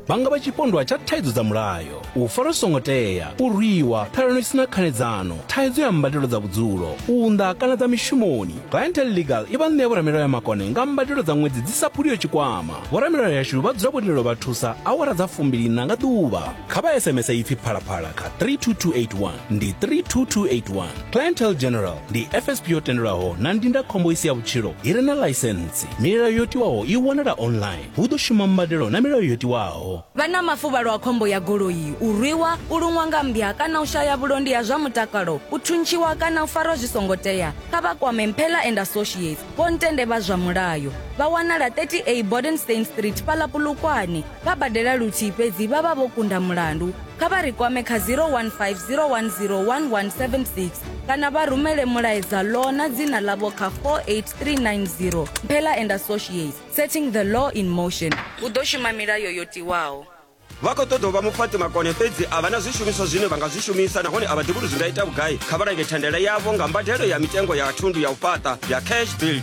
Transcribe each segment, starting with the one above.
vha nga vha tshipondwa tsha thaidzo dza mulayo u fara zwi songo tea u rwiwa phelelo i sina khanedzano thaidzo ya mbadelo dza vhudzulo u unḓa kana dza mishumoni clientel legal i vha ṋea vhoramilayo ya makone nga mbadelo dza ṅwedzi dzi sa phuliyo tshikwama vhoramilayo yashu vha dzula vho lindelo vha thusa awara dza fumbilina nga ḓuvha kha vha sms ipfi phalaphala kha 32281 ndi 32281 clientele general ndi fsp yo tendelwaho na ndindakhombo i si ya vhutshilo i re na ḽaisentsi milayo yo tiwaho i wanala online hu ḓo shuma mbadelo na milayo yo tiwaho vha na mafuvhalo a khombo ya goloi u rwiwa u luṅwa nga mmbya kana u shaya vhulondi ha zwa mutakalo u thuntshiwa kana u farwa zwi songo tea kha vha kwame mphela and associates vho ntende vha zwa mulayo vha wanala 30a bodenstein street fhaḽa pulukwane vha badela luthihi fhedzi vha vha vho kunda mulandu kha vha ri kwame kha 0150101176 kana vha rumele mulaedza law na dzina ḽavho kha 48390 mphela and associates setting the law in motion hu ḓo shuma milayo yo tiwaho vha khou ṱoḓa u vha mufhaṱi makone fhedzi a vha na zwishumiswa zwine vha nga zwi shumisa nahone a vha ḓivhi uri zwi nga ita vhugai kha vha lange thandela yavho nga mbadelo ya mitengo ya thundu ya u fhaṱa ya cash build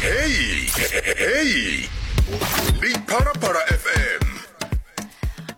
Hey, hey. Ndi Parapara FM.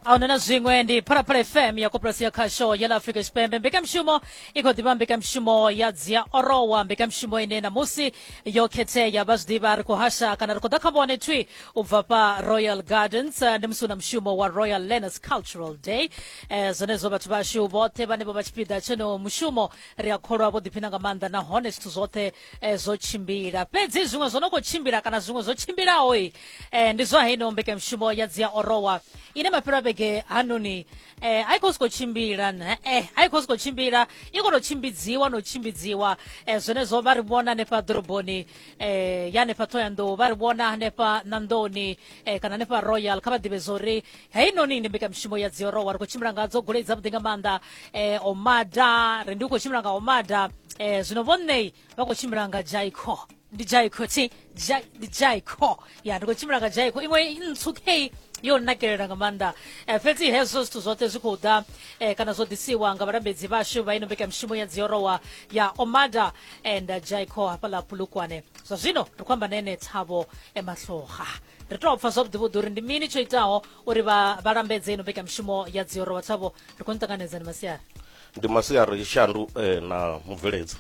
auna na zwiṅwe ndi phalaphala fm ya koporasi ya khasho ya la afrika tshipembe mbekanyamushumo i khou ḓivha mbekanyamushumo ya dzia orowa mbekanyamushumo ine namusi yo khethea vha zwi ḓivha ri khou hasha kana ri khou ḓa kha vhone thwi u bva pa royal gardens eh, ndi musi u na mushumo wa royal learners cultural day eh, zwenezwo vhathu vhashu vhoṱhe vhane vha vha tshipiḓa tshono mushumo ri a kholwa vho ḓiphina nga maanḓa nahone zwithu zwoṱhe eh, zwo tshimbila fhedzi zwiṅwe zwo no khou tshimbila kana zwiṅwe zwo tshimbilaho i eh, ndi zwa heino mbekanyamushumo ya dzi ya orowa ine mafhelo a vhege hanoni eh, a i khou siko tshimbila ne- eh, a i khou siko tshimbila i khou tou tshimbidziwa no tshimbidziwa eh, zwenezwo vha ri vhona hanefha ḓoroboni eh, ya hanefha ṱhoyandou vha ri vhona hanefha nandoni eh, kana hanefha royal kha vha ḓivhe zwo ri heinoni ndi mbekanyamushumo ya dziorowa ri khou tshimbila nga dzo golei dzavhuḓi nga maanḓa eh, omada ri ndi u khou tshimbila nga omada eh, zwino vhonnei vha khou tshimbila nga jaiko ndi jaiko ti Ja- ndi jaiko ya ndi khou tshimbila nga jaiko iṅwe ntswu kei yo nakelela nga maanḓa eh, fhedzi hezwo zwithu zwoṱhe zwi khou ḓa eh, kana zwo ḓisiwa nga vhalambedzi vhashu vha ino mbekanyamushumo ya dziorowa ya omada and jaiko hafhaḽa pulukwane zwa zwino ri khou amba na ene thabo emahloga ri tou pfa zwavhuḓi vhuḓi uri ndi mini tsho itaho uri vha vha lambedze ino mbekanyamushumo ya dzioro vhatshavho ri khou ni ṱanganedza ni masiari ndi masiari shandu eh, na mubveledzi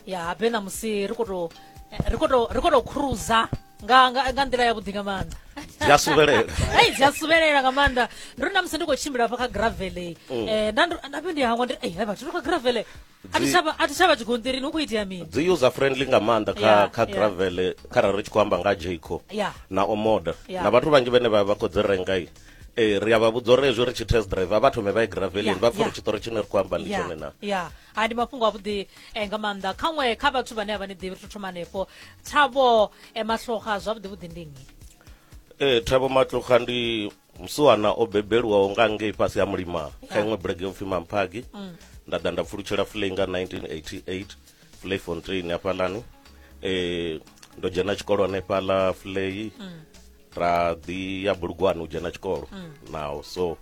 ya habe ṋamusi ri khou tou eh, ri khou tou- ri khou tou cruza nga nga nga nḓila yavhuḓi nga maanḓa dzi a suvhelela hei dzi a suvhelela nga maanḓa ndi uri namusi ndi khou tshimbila hafha kha gravele um nda ndo- nda vhe ndi hangwa ndi ei hai vhathu ri kha gravele a thi Dzi- tsha vha- a thi tsha vha tshigonṱirini hu khou itea mini dzi user friendly nga maanḓa kha Yeah, kha yeah. gravel kharali ri tshi khou amba nga jco Yeah. na omoda Yeah. na vhathu vhanzhi vhane vha vha khou dzi renga i eh, ri a vha vhudza uri hezwi ri tshi test drive a vha thome vha ye gravelini Yeah, vha pfha uri yeah. tshiṱori tshine ri khou amba ndi ya tshone na ya ha ndi mafhungo avhuḓi eh, nga maanḓa khaṅwe kha vhathu vhane a vha ni ḓivhi ri to thoma hanefho thabo eh, mahloga zwavhuḓi vhuḓi ndi nnyi Eh, thabo matloga ndi Musiwana o bebelwaho nga ngei fhasi ha Mulimah kha iṅwe bulege yo pfi Mamphagi nda ḓa nda pfulutshela Flay nga 1988 Flay Fontaine hafhaḽani eh ndo dzhena tshikolo hanefhaḽa Flay ra ḓi ya Bulugwane u dzhena tshikolo naho so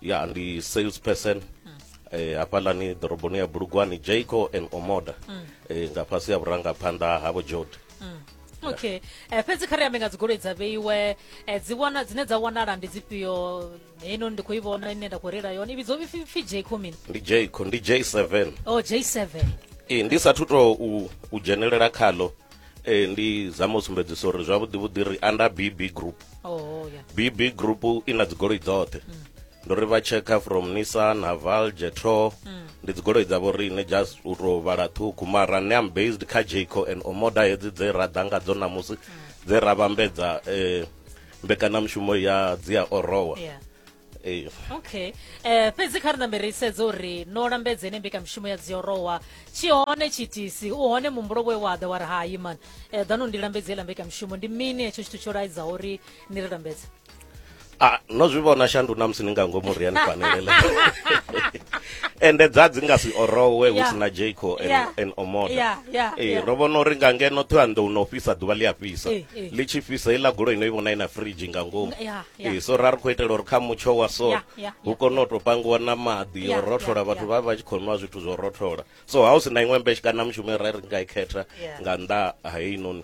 ya ndi sales person eh hafhaḽani ḓoroboni ya Bulugwane Jayco and Omoda eh nga fhasi ha vhurangaphanḓa ha Vho Jodi mm. okay eh, fhedzi kha ri ambe nga dzigoloi dza vheiwe eh, dzi wana dzine dza wanala ndi dzifhio heno ndi khou i vhona ine nda khou reila yone i vhidzo pfi j comin ndi j ndi j seven o oh, j seven ee ndi sathu to u dzhenelela khalo eh ndi zama u sumbedzisa uri zwavhuḓi vhuḓi ri under bb group oh yeah bb group i na dzigoloi dzoṱhe mm. ndo ri vha tshekha from nissan haval jetro mm. ndi dzigoloi dzavho riṋe just u tou vhala ṱhukhu mara ne am based kha jaco and omoda hedzi dze ra ḓa ngadzo namusi mm. dze ra vhambedza um eh, mbekanyamushumo ya dzi a orowa yeah. Eh. okay eh fhedzi kha ri nambe ri sedze uri no lambedze ne mbekamishumo ya dziorowa tshi hone tshitisi u hone muhumbulo we wa ḓa wa ri hayi mani um eh, ḓano ndi lambedze ila mbekamishumo ndi mini hetsho tshithu tsho laidzaho uri ni ri lambedze ah no zwi vhona shandu na musi ni nga ngomu ri ya ni fanelele ende dza dzi nga si orowe hu si na jaco and omoda ee ro vhona uri nga ngeno ṱhoya ndo no fhisa ḓuvha ḽi a fhisa eh, eh. ḽi tshi fhisa iḽa goloi no i vhona i na fridge nga ngomu ee eh, so ra ri khou itela uri kha mutsho wa so hu kone u tou pangiwa na maḓi yo rothola vhathu vha vha tshi khou nwa zwithu zwo rothola so ha u si na iṅwe mbetshi kana mushumo ra ri nga i khetha nga nnḓa ha heinoni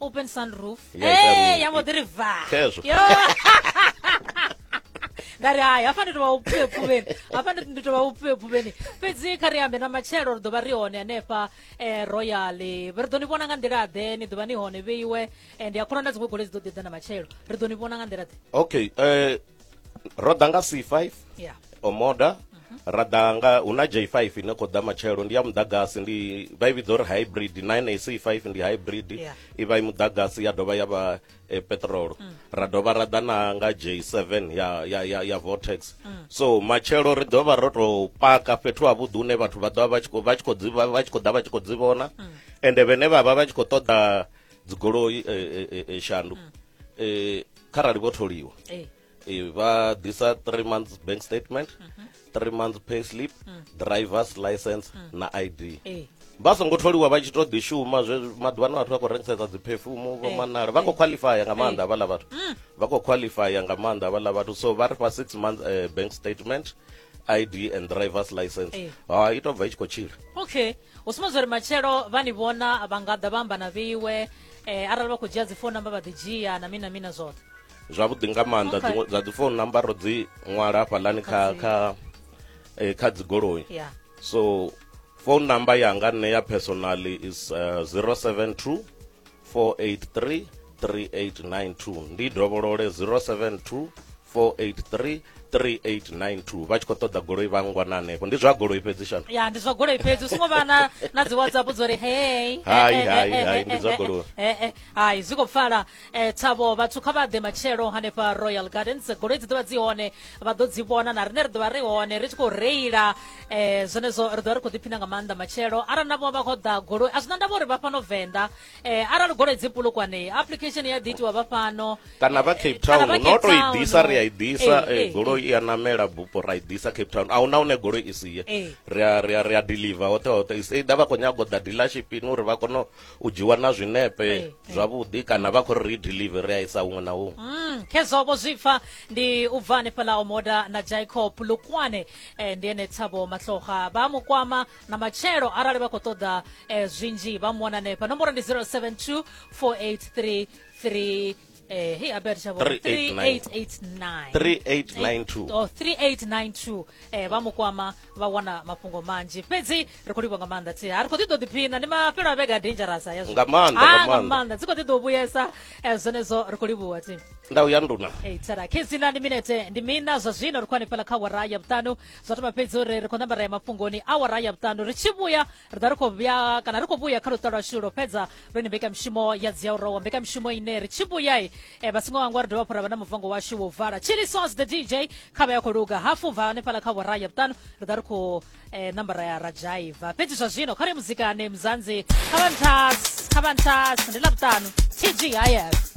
open sunroof Ya ita Eh, roof. ya mbo ḓi ri va Khezwo. Yo. nda ri hai hafha ndi tovha upfue pfuveni hafha ndi- ndi tovha upfue pfuveni fhedzi kha ri ambe na matshelo ri ḓo vha ri hone hanefha eh, royal ri ḓo ni vhona nga nḓila ḓe ni ḓo vha ni hone vheiwe Eh, ndi a khona na dziṅwe goloi dzi ḓo ḓi ḓa na matshelo ri ḓo ni vhona nga nḓila ḓe okay eh ro ḓa nga c5 yeah. omoda ra ḓa nga hu na j5 ine khou ḓa matshelo ndi ya muḓagasi ndi vha i vhidza uri hybrid 9ac5 ndi hybrid Yeah. i vha i muḓagasi ya dovha ya vha eh, petrolo ra dovha ra ḓa na nga j7 ya, ya, ya, ya vortex so matshelo ri ḓovha ro tou paka fhethu havhuḓi hune vhathu vha ḓovha vha tshi khou- vha tshi khou dzi- vha- vha tshi khou ḓa vha tshi khou dzi vhona ende vhene vha vha vha tshi khou ṱoḓa dzigoloi eh, eh, eh, eh, shandu eh, kharali vho tholiwa eh. Eh, vha ḓisa three months bank statement mhm. three months pay slip mm. drivers license mm. na id eh. vha songo tholiwa vha tshi to ḓi shuma zwe maḓuvha na vhathu vha khou rengisesa dzi perfume vho manala vha khou qualifya nga maanḓa havhaḽa vhathu mm. vha khou qualifya nga maanḓa havhaḽa vhathu so vha ri fha six months uh, bank statement id and drivers license eh. ha i tobva i tshi khou tshila okay u sumbedza uri matshelo vha ni vhona vha nga ḓa vha amba na vheiwe eh, arali vha khou dzhia dzi phone number vha ḓi dzhia na mina mina zwoṱhe zwavhuḓi nga maanḓa Okay. dziṅwe dza dzi phone number ro dzi ṅwala hafhaḽani kha Kha dzi- kha eh, kha dzigoloi ya so phone number yanga nne ya personally is uh, 072 483 3892 ndi dovholole 072 4833892 vha tshi khou ṱoḓa goloi vha ngwa na hanefho ndi zwa goloi fhedzi shano ya ndi zwa goloi fhedzi u songo vha na na dzi whatsapp dzo ri hey hai eh, eh, hai eh, hai ndi zwa goloi hai zwi khou pfala tshavho vhathu kha vha ḓe matshelo hanefha royal gardens goloi dzi ḓovha dzi hone vha ḓo dzi vhona na riṋe ri ḓovha ri hone ri tshi khou reila um zwenezwo ri ḓovha ri khou ḓiphina nga maanḓa matshelo arali na vho vha khou ḓa goloi a zwi na ndavha uri vha fhano venḓa eh arali goloi dzi pulukwane application ya ḓitiwa vha fhano kana vha cape town no to i ḓisa ri a i ḓisa eh, eh, goloi eh. i a namela bupo ra i ḓisa cape town a huna hune goloi i si ye ri a ri a ri a deliver hoṱhe hoṱhe is either vha khou nyaga u ḓa dealership ni uri vha kone u dzhiwa na zwinepe zwavhuḓi kana vha khou ri ri deliver ri a isa huṅwe na huṅwe mm, khezwo vho zwi pfa ndi u bva hanefhaḽa omoda na jacob lukwane ndi ene tshavho mahloga vha mu kwama na matshelo arali vha khou ṱoḓa eh, zwinzhi vha mu wana hanefha nomboro ndi 072 483 eh, hey, abert shavo 3889 3892 Oh, 3892 eh, vha mu kwama vha wana mafhungo manzhi fhedzi ri khou livha nga maanḓa thi a ri khou ḓi ḓo ḓiphina ndi mafhelo a vhege a dangerous a yazwo Nga maanḓa, nga Ah, nga maanḓa. maanḓa dzi khou ḓi ḓo vhuyesa eh, zwenezwo ri khou livhuwa thi ndau ya nduna Hey, tsara khezina ndi minete ndi mina zwa zwino ri khou hanefhala kha wara ya vhuṱanu zwa thoma fhedzi uri ri khou ṋamba ra ya mafhungoni awara ya vhuṱanu ri tshi vhuya ri ḓa ri khou vhuya kana ri khou vhuya kha luṱa lwashu lwo fhedza ri ni mbekamishumo ya dzi ya u rowa mbekamishumo ine ri tshi vhuya e eh, vhasingo wangwa ri dovha hafhu ra vha na muvango washu wo vala chili sauce the dj kha vha ya khou luga hafu bva hanefhala kha awara ya vhuṱanu ri ḓa ri khou eh, ṋamba ra ya ra dzhaiva fhedzi zwa zwino kha ri muzikane muzanzi kha vha ntas kha vha ntas ndi ḽa vhuṱanu tg hayas